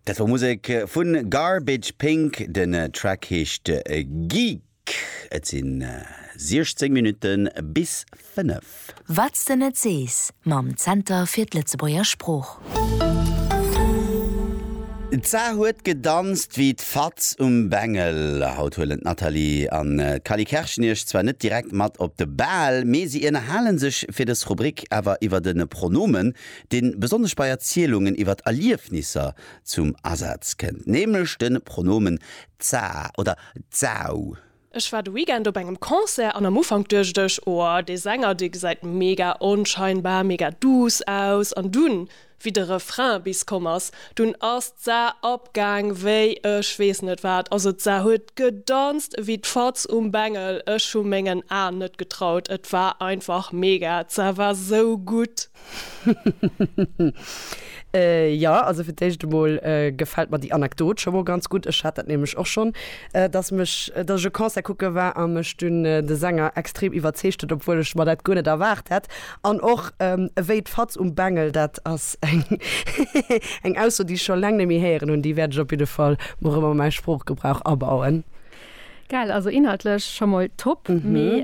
Dat war Musek vun Garbage Pink, den Track heescht Geek. Et sinn 16 Minutten bis 5. Wat s de net sees mam Zenter fir d'Lëtzebuerger Sprooch. D'Sar huet gedanzt wéi d'Fatz um Bengel. Haut huelen d'Nathalie an d'Cally Kerschen iech zwar net direkt mat op de Bal, mee si ënnerhale sech fir dës Rubrik awer iwwer de Pronomen. deen besonnesch bei Erzielungen iwwer Erliefnisser zum Asaz kënnt, nämlech de Pronomen za oder zau. Ech war de Weekend op engem Concert an am Ufank duecht ech, oh dee Sänger dee gesäit mega onscheinbar, mega duuss aus an dunn wéi de Refrain bis komm ass, dunn ass d'Sa apgaang wéi ech weess net wat, also d'Sa huet gedanzt ewéi d'Fatz um Bengel, ech hu mengen Aen net getraut, et war einfach mega, d'Sa war sou gutt. Jo, also fir d'éischt emol gefält mer déi Anekdot scho mol ganz gutt. Ech hat dat nämlech och schonn, dass mech, dass ech e Concert kucke war a mech dunn de Sänger extrem iwwerzeegt huet, obwuel ech mer dat guer net erwaart hätt. An och ewéi d'Fatz um Bengel, dat ass eng Ausso, déi ech scho laang net méi héieren hunn, déi wäert ech op jidde Fall mol erëm a mäi Sproochgebrauch abauen. Geil, also inhaltlech scho mol top, mee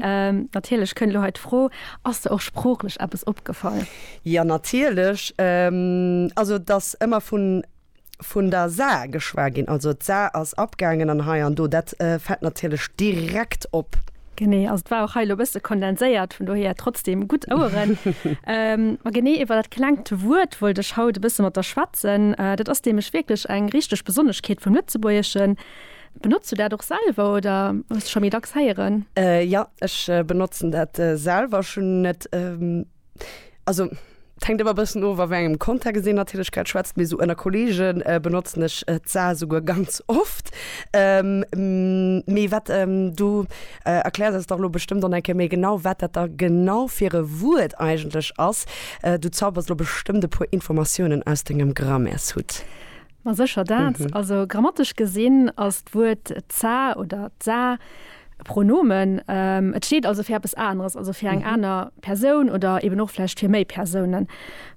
natierlech kënnt elo hei d'Fro, Ass der och sproochlech eppes opgefall? Jo, natierlech. Also et ass ëmmer vun vun der Saar geschwat ginn, also d'Saar ass abgaangen an hei an do, dat fält natierlech direkt op. Genee, also et war och hei elo e bësse kondenséiert, vun dohier trotzdeem gutt Oueren. Ma genee iwwer dat klengt Wuert wollt ech haut e bësse mat der schwätzen. Dat ass nämlech wierklech eng richteg Besonneschkeet vum Lëtzebuergeschen. Benotz du dat och selwer oder hues de scho méi dacks héieren? Jo, ech benotzen dat selwer. Ech hunn net, also et hänkt ëmmer e bëssen of, a wéi engem Kontext een natierlech grad schwätzt, mee esou ënner Kolleege benotzen ech d'Sa esouguer ganz oft. Mee wat du erkläers eis dach elo bestëmmt dann eng Kéier méi genau, wat dat da genau fir e Wuert eigentlech ass. Du zaubers elo bestëmmt e puer Informatiounen aus dengem Grammaires-Hutt. Ma sécher dat. Also grammatesch gesinn ass d'Wuert d'sa oder d'sa e Pronomen. Et steet also fir eppes aneres, also fir eng aner Persoun oder eben och vläicht fir méi Persounen.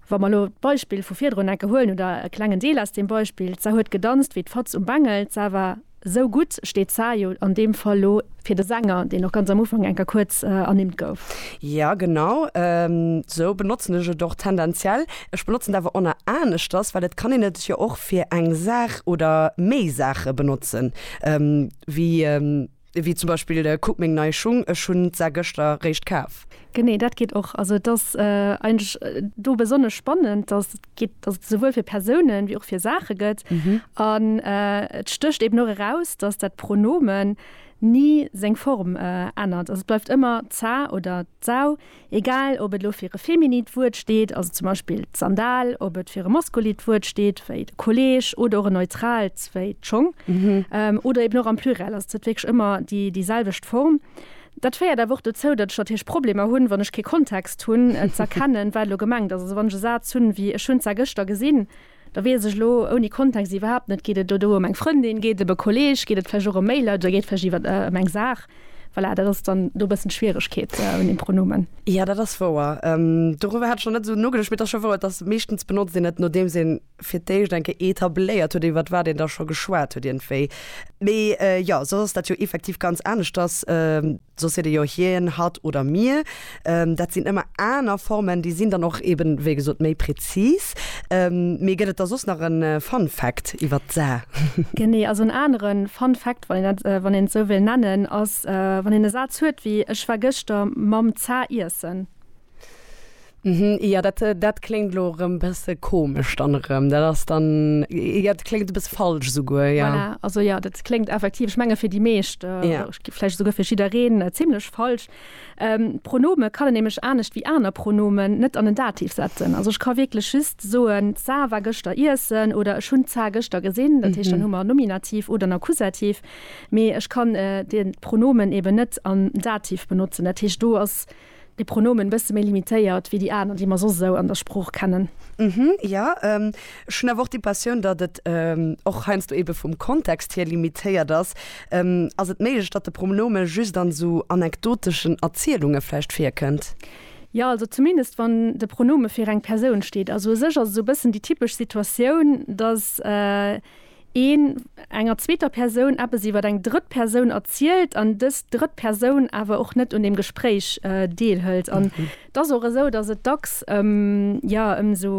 Wa mer elo d'Beispill vu virdrun enke huelen oder e klengen Deel aus deem Beispill, d'sa huet gedanzt wéi d'Fatz um Bengel, d'sa war Esou gutt steet d'Saar jo an deem Fall elo fir de Sänger, deen och ganz am Ufank enker kuerz ernimmt gouf. Jo, genau esou benotzen ech et och tendenziell. Ech benotzen et awer onna aneschters, well et kann een et jo och fir eng Saach oder méi Saache benotzen, wéi wéi zum Beispill kuck meng nei Schung, ech hunn d'Saar gëschter réischt kaf. Genee, dat geet och. Also et ass eigentlech do besonnesch spannend, dass. geet, dass et esouwuel fir Persounen wéi och fir Saache gëtt. An et stécht eben och eraus, dass dat Pronomen ni seng Form ännert. Also et bleift ëmmer d'sa oder d'sau, egal ob et elo fir e feminit Wuert steet, also zum Beispill d'Sandal, ob et fir e maskulit Wuert steet, wéi de Kolleeg, oder och en neutraalt, wéi d'Schong, oder eben och am Pluriel. Also et huet wierklech ëmmer déi selwecht Form. Dat féiert awer och dozou, datt ech natierlech Problemer hunn, wann ech kee Kontext hunn, z'erkennen, wat elo gemengt ass. Also wann ech e Saz hunn, wéi ech hunn zwar gëschter gesinn, da weess ech elo ouni Kontext iwwerhaapt net, geet et elo do ëm eng Frëndin, geet et ëm e Kolleeg, geet et vläicht och ëm Mailer oder geet et vläicht iwwer ëm eng Saach? Voilà, dat ass dann do e bëssen d'Schwieregkeet un deem Pronomen. Jo, dat ass wouer. Doriwwer hat ech nach net esou nogeduecht, mee et ass scho wouer, et ass meeschtens benotzt een et, nodeems een fir d'éischt eng Kéier etabléiert huet, iwwert wat een da scho geschwat huet iergendwéi. Mee jo, soss ass dat jo effektiv ganz aneschters. Soss seet ee jo hien, hatt oder mir. Dat sinn ëmmer aner Formen, déi sinn dann och eeben, wéi gesot, méi prezis. Mee gëtt et da soss nach e Fun Fact iwwert d'Sa? Genee, also en anere Fun Fact, wann een dat, wann een et esou wéilt nennen, ass, wann een e Saz huet wéi, Ech war gëschter mam Za iessen. Mhm, jo, dat, dat kléngt elo erëm e bësse komesch dann erëm. Dat ass dann, jo, dat kléngt e bësse falsch esouguer, jo. Voilà, also jo, dat kléngt effektiv, ech menge fir déi meescht, jo, vläicht esouguer fir jiddereen, zimmlech falsch. Pronome kann een nämlech anescht wéi aner Pronomen net an en Dativ setzen. Also ech ka wierklech just soen, d'Sar war gëschter iessen oder ech hunn d'Sar gëschter gesinn. Dat heescht, dann hu mer Nominativ oder en Akkusativ. Mee ech kann de Pronomen eeben net am Dativ benotzen. Dat heescht, do ass. Déi Pronomen bësse méi limitéiert wéi déi aner, déi mer soss esou an der Sprooch kennen. Hm, jo. Ech hunn awer och déi Passioun, datt et och heiansdo ebe vum Kontext hier limitéiert ass. Ass et méiglech, datt de Pronome just an esou anekdoteschen Erzielunge vläicht virkënnt? Jo, also zumindest wann de Pronome fir eng Persoun steet. Also u sech ass et esou e bëssen déi typesch Situatioun, datt. een enger zweeter Persoun eppes iwwer eng drëtt Persoun erzielt an dës drëtt Persoun awer och net un deem Gespréich deelhëlt. An et ass och esou, datt et dacks ëm, jo, ëm esou,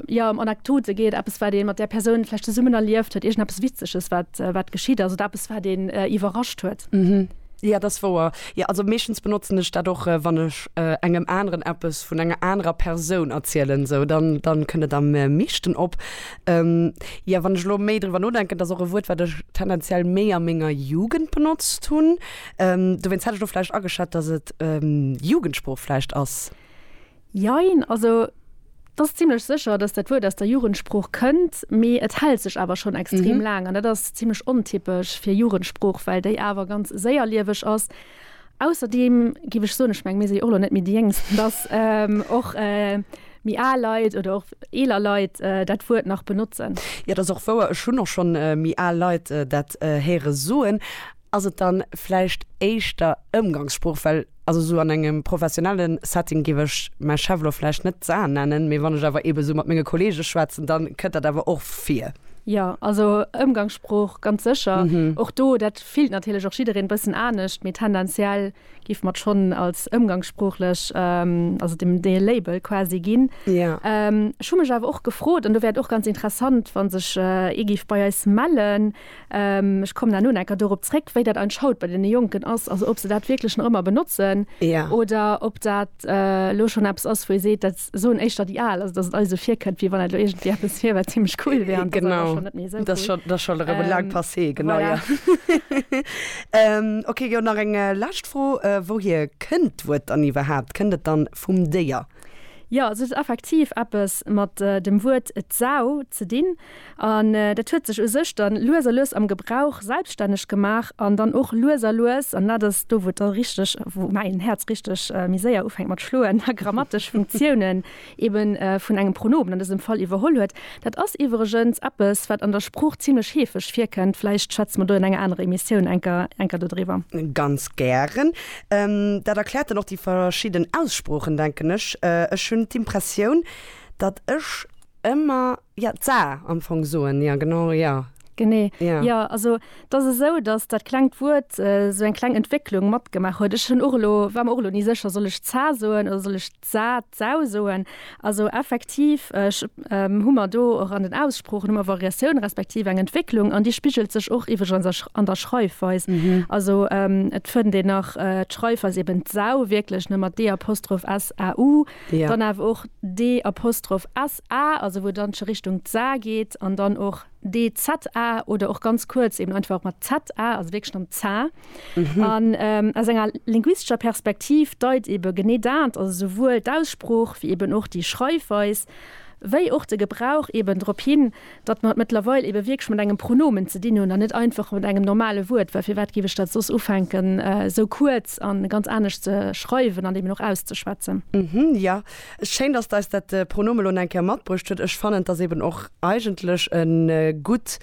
jo, ëm Anekdote geet, eppes wat ee mat där Persoun vläicht zesummen erlieft huet, iergendeppes Witzeges wat, wat geschitt ass oder eppes wat een iwwerrascht huet. Jo, dat ass wouer. Jo, also meeschtens benotzen ech dat och, wann ech engem aneren eppes vun enger anerer Persoun erzielen, esou, dann, dann kënnt et am meeschten op. Jo, wann ech elo méi driwwer nodenken, dat ass och e Wuert, wat ech tendenziell méi a menger Jugend benotzt hunn. Dowéinst hätt ech elo vläicht ageschat, datt et Jugendsprooch vläicht ass. Jein, also et ass zimlech sécher, datt dat Wuert aus der Jugendsprooch kënnt, mee et hält sech awer schonn extrem laang. An dat ass zimlech ontypesch fir Jugendsprooch, well déi awer ganz séierlieweg ass. Ausserdeem giff ech soen, ech mengen mir si jo och elo net méi déi Jéngsten, dass och méi al Leit oder och eeler Leit dat Wuert nach benotzen. Jo, dat ass och wouer, ech hunn och schonn méi al Leit dat héiere soen. Ass et dann vläicht éischter Ëmgangssprooch? Well also esou an engem professionellen Setting giff ech mäi Chef elo vläicht net d'Sa nennen, mee wann ech awer eben esou mat menge Kollegen schwätzen, dann kënnt dat awer och vir. Jo, also Ëmgangssprooch ganz sécher och do dat. Fillt natierlech och jiddereen bëssen anescht, mee tendenziell géife mer et schonn als ëmgangssproochlech, also dem dee Label quasi ginn. Ech hu mech awer och gefrot, an do wär et och ganz interessant, wa sech ee géif bei eis mellen, ech kommen herno nach enker dorop zréck, wéi dat eigentlech haut bei deene Jonken ass, also ob se dat wierklech nach ëmmer benotzen oder ob dat elo schonn eppes ass, wou ee seet, dat. soen éischter déi al, also datt et alles esou virkënnt, wéi wann dat elo iergendwéi eppes wier, wat zimlech cool wier an datt dat awer schonn net méi esou cool. Genau, dat ass schonn erëm e laangt Passé, genau, jo. Voilà. Ok, jo, nach eng lescht Fro, Wouhier kënnt d'Wuert dann iwwerhaapt? Kënnt et dann vum Déier? Jo, also et huet effektiv eppes mat dem Wuert d'Sau ze dinn. An dat huet sech u sech dann lues a lues am Gebrauch selbstänneg gemaach an dann och lues a lues, an dat ass do, wou et da richteg, wou mäin Häerz richteg méi séier ufänkt mat schloen, grammatesch Funktiounen eben vun engem Pronomen an dësem Fall iwwerholl huet. Dat ass iwwregens eppes, wat an der Sprooch zimlech heefeg virkënnt. Vläicht schwätze mer do an enger anerer Emissioun enker, enker dodriwwer. Ganz gären. Dat erkläert dann och déi verschidden Aussproochen, denken ech. Ech hunn d'Impressioun, datt ech ëmmer. Ja, d'Saar am Fong soen, ja genau, ja. Genee, jo. Also et ass esou, datt dat klengt Wuert esou eng kleng Entwécklung matgemaach huet. Ech hunn och elo, war mer och elo ni sécher, soll ech d'Zaa soen oder soll ech d'Sah, d'Sau soen? Also effektiv hu mer do och an den Aussproochen hu mer Variatioun respektiv eng Entwécklung an déi spigelt sech och iwwregens an der Schreifweis. Also et fënnt een nach d'Schreifweis eben d'Sau wierklech, ne mat d-apostroph s-a-u, dann awer och d-apostroph A, also wou et dann scho Richtung d'Sa geet, an dann och DZA oder och ganz kuerz eben einfach och mat ZA, also wierklech dann Za. An aus enger linguistescher Perspektiv deit eben genee dat, also souwuel d'Aussprooch wéi eben och déi Schreifweis, wéi och de Gebrauch eben drop hin, datt mer et mëttlerweil ebe wierklech mat engem Pronomen ze dinn hunn an net einfach mat engem normale Wuert, well firwat géif ech dat soss ufänken esou kuerz a ganz anescht ze schreiwen an eben och auszeschwätzen. Hm, jo, schéin, datt eis dat Pronomen elo nach eng Kéier matbruecht huet. Ech fannen, et ass eben och eigentlech e gutt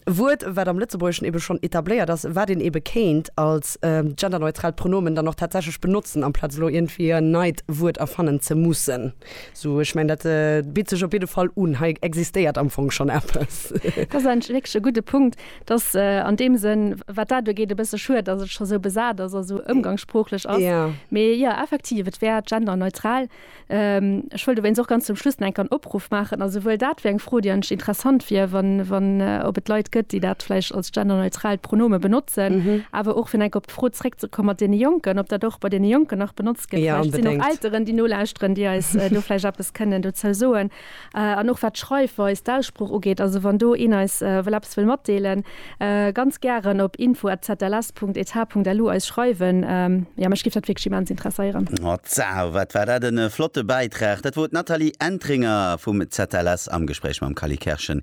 Wuert, wat am Lëtzebuergeschen ebe schonn etabléiert ass, wat een ebe kéint als genderneutraalt Pronomen dann och tatsächlech benotzen, amplaz elo iergendwéi en neit Wuert erfannen ze mussen. Sou, ech mengen, dat bitt sech op jidde Fall un. Hei existéiert am Fong schonn eppes. Dat ass eigentlech wierklech e gudde Punkt. Et ass an deem Sënn, wat dat ugeet, e bësse schued, datt et scho sou besat ass a sou ëmgangssproochlech ass. Mee jo, effektiv, et wär genderneutral. Ech wëll dowéinst och ganz zum Schluss nach eng Kéier en Opruff maachen, a souwuel dat wär eng Fro, déi eigentlech interessant wier, wann, wann, ob et Leit gëtt, déi dat vläicht als genderneutralt Pronome benotzen, awer och, fir nach eng Kéier op d'Fro zréckzekomm mat deene Jonken, ob dat och bei deene Jonken nach benotzt. Ja, unbedéngt. Vläicht sinn och Elteren, déi nolauschteren, déi eis do vläicht eppes kënnen dozou soen. An och wat d'Schreifweis, d'Aussprooch ugeet, also wann do een eis wëll eppes wëll matdeelen, ganz gären op info@zls.eth.lu eis schreiwen. Jo, mech géif dat wierklech immens interesséieren. Hotzau, wat war dat en flotte Bäitrag! Dat wor d'Nathalie Entringer vum ZLS am Gespréich mam Kally Kerschen.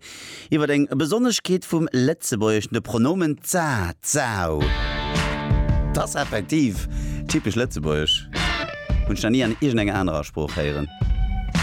Iwwer eng Besonneschkeet vum Lëtzebuergeschen, de Pronomen za, zau. T'ass effektiv typesch lëtzebuergesch, hunn ech nach ni an iergendenger anerer Sprooch héieren.